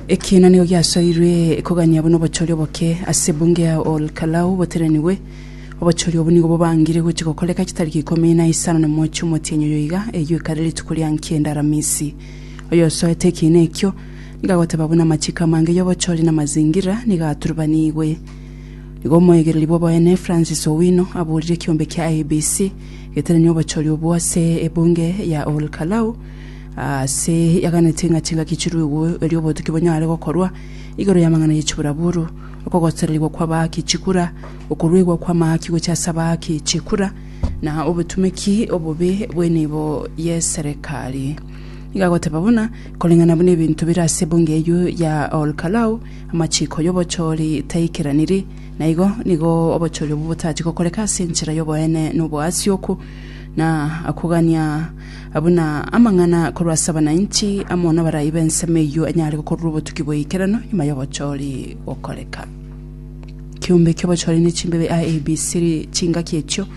Ekiina nigo giasoirwe kogania buna obochori oboke ase ebunge ya Ol Kalou boterenigwe. Obochori obwo nigo bobangire gochia gokoreka chitariki ikomi na isano na mochie omotienyi oyo iga, eyio ekare rituko ria nkienda Aramisi. Oyosoete ekiina ekio nigo agoteba buna amachiko amange y'obochori na amazingira nigo aturubanigwe. Nigo omoegereri bw'oboene Francis Owino aburire ekiombe kia IEBC geteranie obochori obwo ase ebunge ya Ol Kalou, Aase yaganete ng'a chingaki chiruigwe, erio obotuki bonyare gokorwa igoro y'amang'ana ye chiburaburu, okogosererigwa kw'abaaki chikura, okoruegwa kw'amaaki gochia ase abaaki chikura, na obotumeki obobe bw'enibo y'eserekari. Iga agoteba buna, Koreng'ana buna ebinto bire ase ebunge eyio ya Olkalau, amachiiko y'obochori taikeraniri, na igo nigo obochori obwo botachia gokoreka ase enchera y'oboene na oboasioku, na akogania buna amang'ana korwa ase abananchi amo nabarai b'ensemo eyio anyare gokorerwa obotuki bw'eikerano nyuma y'obochori gokoreka. Kiombe ki'obochori ne chimbebe a A, B, C ri chingaki echio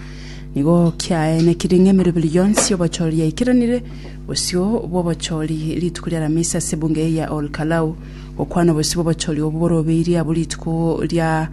nigo kiaenekire ng'a emeroberi yonsi y'obochori yaikeranire. Bosio bw'obochori rituko ri'Aramisi ase ebunge eye ya Ol Kalou gokwana obosio bw'obochori obwo borobeirie abwo rituko ria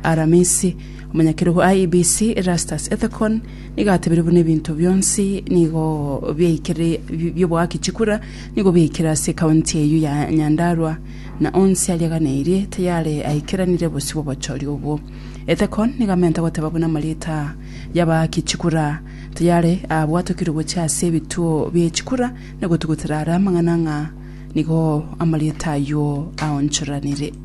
Aramisi. Omonyakerogo A, B, C Erastus Ethekon, Nigo atebire buna ebinto bionsi nigo biaikire bioboaki chikura nigo biaikire ase ekaunti eyio ya Nyandarua na onsi ariaganeirie tayare aikeranire bosio bw'obochori obwo. Ethekon nigo amenta goteba buna amarita y'abaaki chikura tayare abwatokirwe gochia ase ebituo bie chikura na gotugutera are amang'ana ng'a nigo amarita ayio aonchoranire.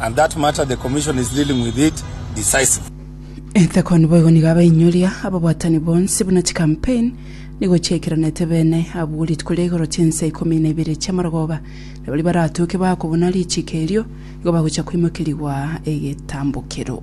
and that matter the commission is dealing with it decisive. Etheko niboigo nigo abainyoria ababwatani bonsi buna chikampain nigo chiaikeranete bene abwo rituko ria igoro chinsa ikomi na ibere chi'amarogoba, na baria baratoke bakobuna richiiko erio igo bagocha koimokerigwa egetambokero.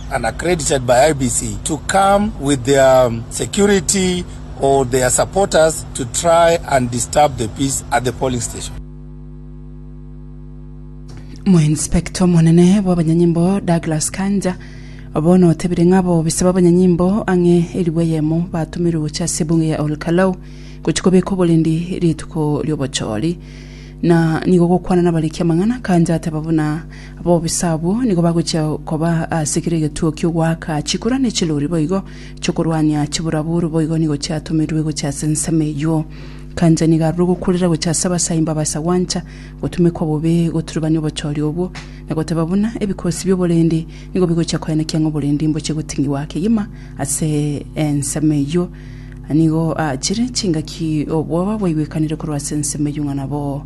and accredited by IEBC to come with their security or their supporters to try and disturb the peace at the polling station. Omoinspector omonene bw'abanyanyimbo Douglas Kanja bono otebire ng'a bobisa b'abanyanyimbo ang'e elifu eyemo batumirwe gochia ase ebunge ya Ol Kalou gochia kobeka oborendi rituko ri'obochori na nigo gokwana nabariki amang'ana. Kanja ateba buna Abobisa abwo nigo bagochia koba ase kera egetuo ki'ogoaka chikura ne chilori boigo chi'okorwania chiburaburu, boigo nigo chiatomirwe gochia ase ensemo eyio. Kanja nigo arure ogokurera gochia ase abasaimba abasa gwancha gotumekwa bobe goturubania obochori obwo, na goteba buna ebikosi bi'oborendi nigo bigochia koenekia ng'a oborendi mbochie goting'igwa kegima ase ensemo eyio. Nigo achire chingaki obwoba bwaigwekanire korwa ase ensemo eyio ng'a nabo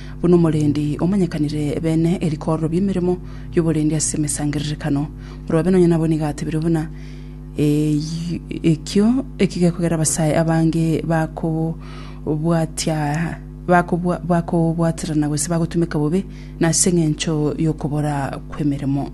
buna omorendi omanyekanire beene erikorero ri'emeremo y'oborendi ase emesangererekano. Morobe nonye nabo nigo atebire buna ekio gekogera abasae abange bakobwaterana gose bagotumeka bobe nase engencho y'okobora kw'emeremo.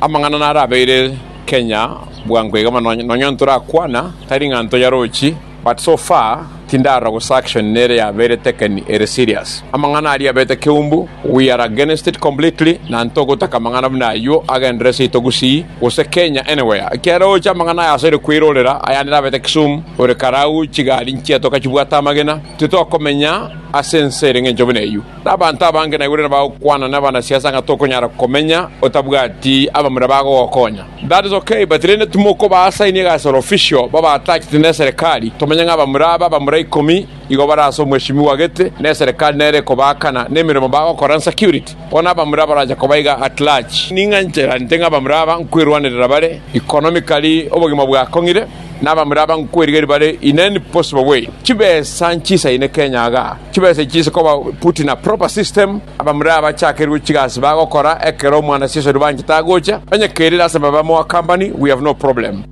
Amang'ana narabeire Kenya bwango iga bono nonya ntorakwana tari ng'a ntoyarochi but so far tindarora gose action nere yabeire taken ere serious. Amang'ana aria abete keumbu we are against it completely na ntogotaka amang'ana buna ayio agenderere seito Gusii gose Kenya anywhere ekiagera oche amang'ana aya asore kweirorera aya nere abete Kisumu ore karau chigari nchiatoka chibwate amagena titokomenya ase ense ere ng'encho buna eyio. Nabaanto abange naigure nibagokwana nabanasiasa ng'a tokonyara komenya otabwati abamura bagogokonya. That is okay but rende timokobaasainia iga asore official babaatachete neserikali tomenye ng'a abamura aba abamura ikomi igo bare ase omweshimiwa gete neserikali nere ekobaakana nemeremo bagokora nsecurity bono abamura barache koba iga at large ning'a ncherante ng'a abamura aba nkwerwanerera bare economically obogima bwakong'ire nabamura aba nkwerigeria bare in any possible way chibesa nchisaine Kenya igaa. Chibesa echi nkoba put in a proper system, abamura abachakerwe chigasi bagokora ekero omwana sesori banchete agocha, onye kerire ase baba moa company we have no problem.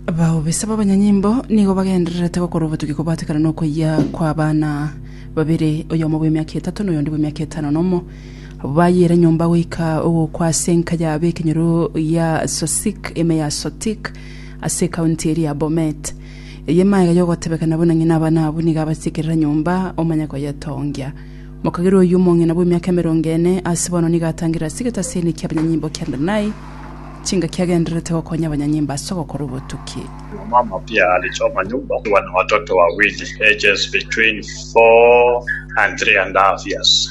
Baobisa b'abanyanyimbo nigo bagendererete gokora obotugi kobwatekana n'okoyia kw'abana babere, oyomo bw'emiaka etato na oyonde bw'emiaka etano nomo. Abwo bayiire nyomba goika ogokwa ase enka ya b'ekenyoro ya Sosik, ime ya Sotik, ase ekaunti eria ya Bomet. Eye magega y'ogotebekana buna ng'ina abana abwo nigo abasikerera nyomba, omanye koyetongia. Mokagera oyio omong'ina bw'emiaka emerongo ene ase bono nigo atangire ase egetasini ki'abanyanyimbo kia Adonai, chinga kiagendererete gokonya abanyanyimbo ase ogokora obotuki. Mama pia alichoma nyumba akiwa na watoto wawili ages between four and three and a half years.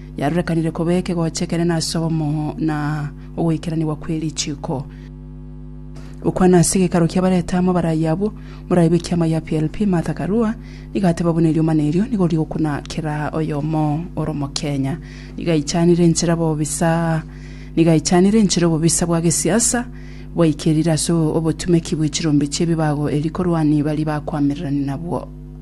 yarorekanire koba ekegocha ekenene ase obomoo na ogoikeranigwa kwe richiiko. Gokwana ase gekaro kia bareta amo barayi abwo, morayi bwe kiama gia PLP Martha Karua nigo ateba buna erioma na erio nigo rigokuna kera oyomo oro mokenya. Nigo aichanire enchera bobisa nigo aichanire enchera obobisa bwa gesiasa bwaikerire ase obotumeki bwe chirombe chie ebibago eri korwani bari bakwamererani nabwo.